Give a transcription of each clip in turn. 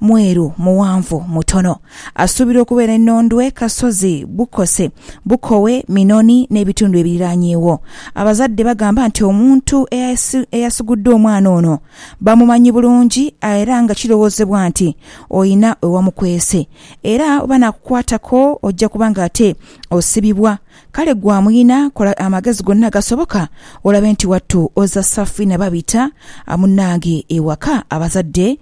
mweru, mughanvu, mutono. Asuubirwa okubeera e Nondwe, Kasozi, Bukose, Bukowe, Minoni n'ebitundu ebiriraanyeewo. Abazadde bagamba nti omuntu eyasugudde omwana ono bamumanyi bulungi era nga kirowoozebwa nti olina we wamukwese era bw'anaakukwatako ojja kuba ng'ate osibibwa. Kale gwe amulina kola amagezi gonna agasoboka olabe nti wattu ozza safi na Babita munnange ewaka, abazadde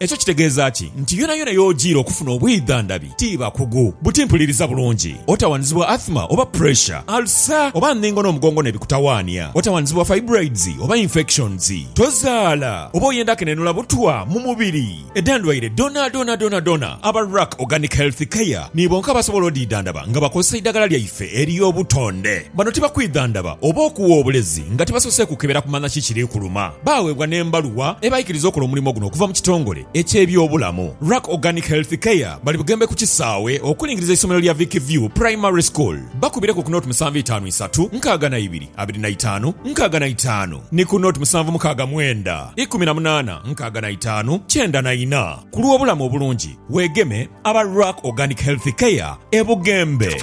Ekyo kitegeeza ki? Nti yonayona y'ojiira okufuna obwidhandhabi ti bakugu buti mpuliriza bulungi, otawanizibwa athma oba pressure, alsa oba ndhingo n'omugongo n'ebikutawaania, otawanizibwa fibroids oba infections, tozaala oba oyenda kenenula butwa mu mubiri. Edhendwaire dhonaadhonaadhonaadhona aba Ruck Organic Health Care ni bonka abasobola odhidhandhaba nga bakozesa eidhagala lyaife ery'obutonde. Bano tibakwidhandhaba oba okuwa obulezi nga tibasoose kukebera kumanya ki kiri kuluma. Baaweebwa n'embaluwa ebaikiriza okola omulimo guno okuva mu kitongole eky'ebyobulamu, Ruck Organic Health Care. Bali Bugembe ku kisaawe okulingiriza eisomero lya Vic View Primary School. Bakubireku ku nought musanvu itaanu isatu nkaaga na ibiri abiri na itaanu nkaaga na itaanu ni ku nought musanvu mukaaga mwenda ikumi na munaana nkaaga na itaanu kyenda na ina. Ku lw'obulamu obulungi, weegeme aba Ruck Organic Health Care e Bugembe.